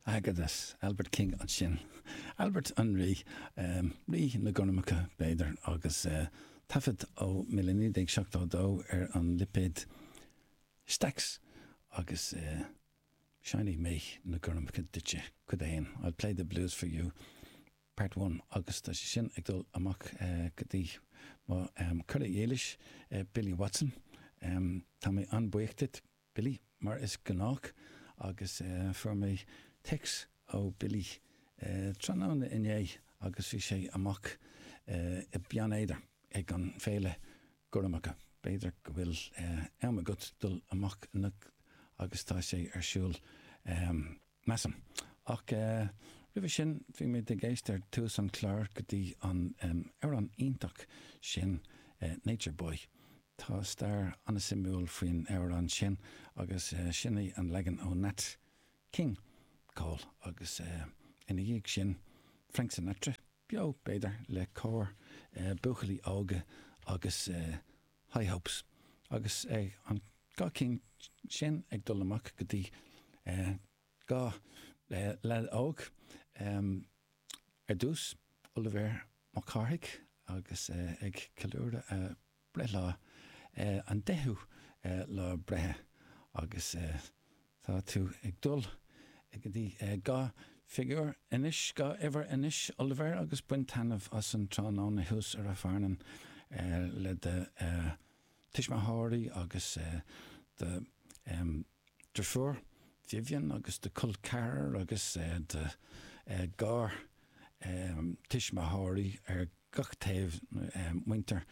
Agus, Albert King ansin. Albert an rí, rí na gormacha, b'fhéidir, agus taifead ó 1972 ar an lipéad Stax agus Seinnfidh mé na gormacha duitse, Cuid 1, I'll play the blues for you, Part One, agus tá sé sin ag dul amach go dtí mo chara dílis, Billy Watson. Tá mé an-buíoch duit. Billy, mar is gnách, agus fuair mé téacs ó Billy tráthnóna inné agus bhí sé amach i Beann Éadair ag an bhFéile Gormacha. B'fhéidir go bhfuil am agat dul amach anocht agus tá sé ar siúl. measaim. Ach roimhe sin, bhí muid ag éisteacht ar tús an chláir go dtí an amhrán iontach sin Nature Boy. Tá stair an-suimiúil faoin amhrán sin agus sin é an leagan ó Nat King Cole agus ina dhiaidh sin Frank Sinatra, beo b'fhéidir, le cór buachaillí óga agus. high hopes. Agus an dá cinn sin ag dul amach go dtí dhá leaid óg, ar dtús Oilibhéar Mac Cárthaigh agus é ag ceiliúradh a bhreithlá, an deichiú lá breithe, agus. Tá tú ag dul go dtí dhá figiúr anois, dhá uimhir anois, Oilibhéar, agus bain taitneamh as an tráthnóna thuas i Rath Fearnáin le do tuismitheoirí agus do dheirfiúr Vivian agus do col ceathrar agus do gartuismitheoirí ar gach taobh, muintir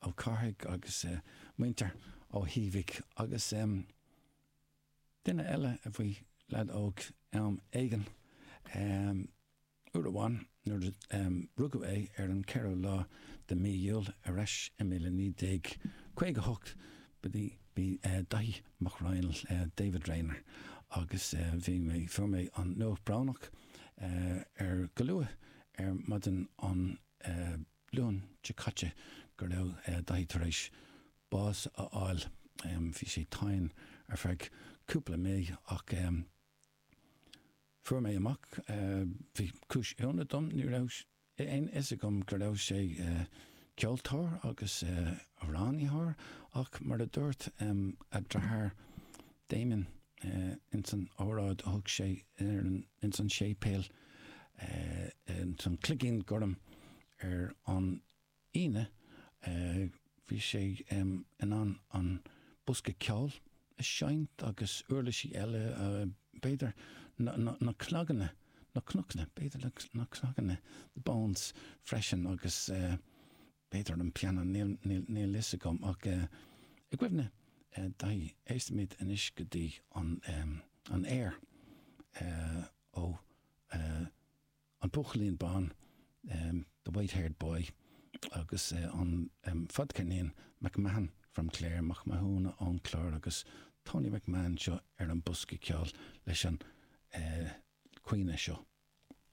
Ó Cárthaigh agus muintir Ó hÍbhigh agus. Duine eile a bhí leaid óg am éigin. Uair amháin nuair a rugadh é ar an 4ú lá de mí Iúil ar ais i 1958 b'é Daithí Mac Raghnaill, David Rayner, agus bhí mé, fuair mé an nuacht brónach ar go luath ar maidin Dé Luain seo caite go raibh Dáithí tar éis bás a fháil. Bhí sé tinn ar feadh cúpla mí ach fuair mé amach, bhí cúis ionadh dom, ní raibh aon fhios agam go raibh sé ceoltóir agus amhránaitheoir ach mar a dúirt a dheartháir Damien ins an óráid a thug sé ins an séipéal, Ins an Cloigín Gorm ar an Aoine bhí sé in ann an bosca ceoil a seinnt agus uirlisí eile, b'fhéidir na cnaganna, na cnaganna, b'fhéidir na cnaganna, the bones, freisin agus b'fhéidir an pianó, níl 'fhios agam. Ach i gcuimhne Daithí, éistfimid anois go dtí an aer. ó An Buachaillín Bán, The White-Haired Boy, agus ón bhfadcheirnín McMahon from Clare, Mac Mathúna ón gClár agus Tony McMahon seo ar an bosca ceoil leis an chaoineadh seo.